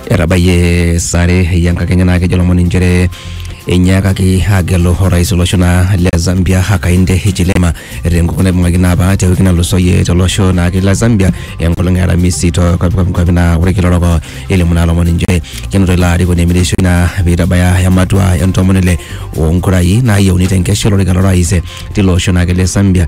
etabayie sare eyiankakenya naa kejo lomoni inchere enyiakaki agelu orais olosho naa le Zambia Hakainde Hichilema tenkukuo naibung'aki naa apa te wiki nalusoyie tolosho naake le Zambia enkolong e Aramisi to kwapi naa ore kila oroko elimu naa lomoni inchere kenoto ilo arikoni emirishoi naa peitabaya ematua entomoni ile onkurai naayieuni tenkesha olorika lorais tilo osho naake le Zambia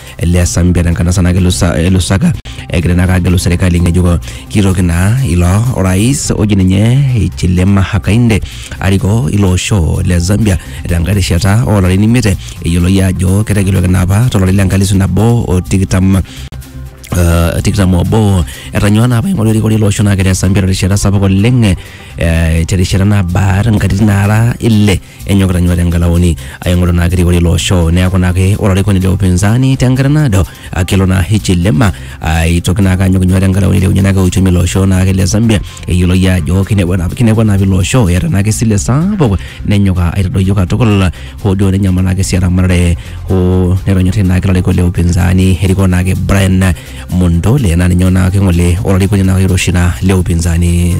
le Zambia tenkanasa naa kelusa- elusaka egira naa agelu serikali ng'ejuko kitoki naa ilo orais oji ninye Hichilema Hakainde arikoo ilo osho le Zambia tenkae rishata oolarin imiet eyioloi ajo ketegeluaki naa apa tolari le nkalisu nabo o tikitam Uh, tikitam obo etanyua naa apa aing'oru erikore ilo osho naa kegira Zambia terishata sapuk oleng eh, terishata nabaa nkatitin naara ile enyokita nyua tenkalaoni aing'oru naa kirikori ilo osho neeku naake ore olarikoni le upinzani tenkata naado akelo naa hichilema aitoki naake anyok nyua tenkalaoni ailepunye naake uchumi ilo osho naake le Zambia eyioloi ajo kinepua naa kinepua naa ilo osho eeta naake esile sapuk nenyok aitadoyio katukul hoo duo nenyamal naake sii eramatare hoo netonyorrai naake ilarikok le upinzani erikoo naake Brian Mondole na ninye onaake ng'ole olarikoni naa oiroshi naa le upinzani.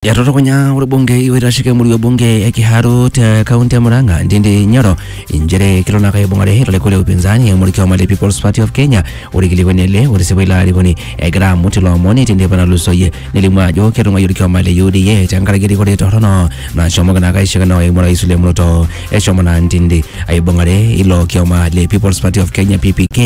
Etorokonya orbungei oitasheki emurua ebunge e Kiharu te kaunti e Murang'a Ndindi Nyoro inchere kelo naa kaibung'are ilarikok le upinzani eimu orkioma le People's Party of Kenya orkilikuani ele otisipu ilo arikoni egira amut ilo omoni tenteipa natulusoyie nelimu ajo ketung'uayie orkioma le UDA tenkaraki erikore torrono nashomoki naa kaishakino eimu orais William Ruto. eshomo naa ntindi aibung'are ilo kioma le People's Party of Kenya PPK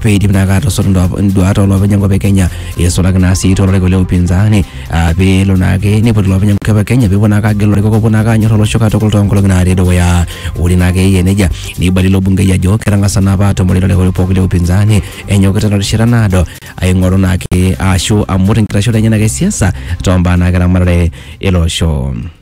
peidim naa kaatosot nduat- nduat olopeny enkop e Kenya eisulaki naa sii toloriko le upinzani ah, peelo naake neipot ilopeny enkop e Kenya peepuo naake agelu ilarikok opuo naake anyor olosho katukul toonkolong'i naatii dukuya ore naake eyia nejia neibali ilo bungei ajo ketang'asa naa apa atumore ilarikok pooki le upinzani enyokita terishata naado aing'oru naake ashu amut enkitashoto enye naake e siasa toombaa naake eramatare ele osho.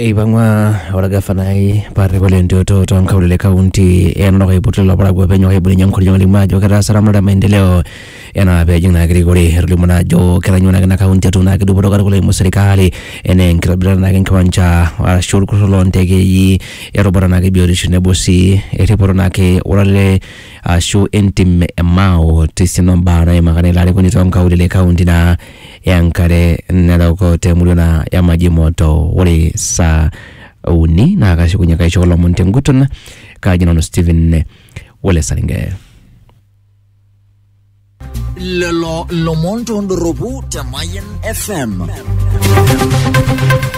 Eipang'ua olgafanai Patrick Ole Ntuoto too nkaulele e kaunti e Narok aipotu lelo parakuo pee enyok aibelekenyie enkoriong alimu ajo ketaasa eramatare e maendeleo enaa pee ejing naa erikore. Etolimuo naa ajo ketanyua naake ina kaunti atum naake dupoto katukul eimu serkali enaa enkitobirata naake enkiwanja arashu olkurruk loo ntekei, erubata naake e biotisho tenebo sii erripoto naake o lale ashu entim e Mao te siana o mbaa naimaka naa ilo arikoni too nkaulele e kaunti naa enkare narok temurua na ya maji moto ore saa uni naa kashukunye kaisho kulo omon tenguton kaaji nanu Stephen Wole Saringe. lelo lomon tondoropu te Mayan FM.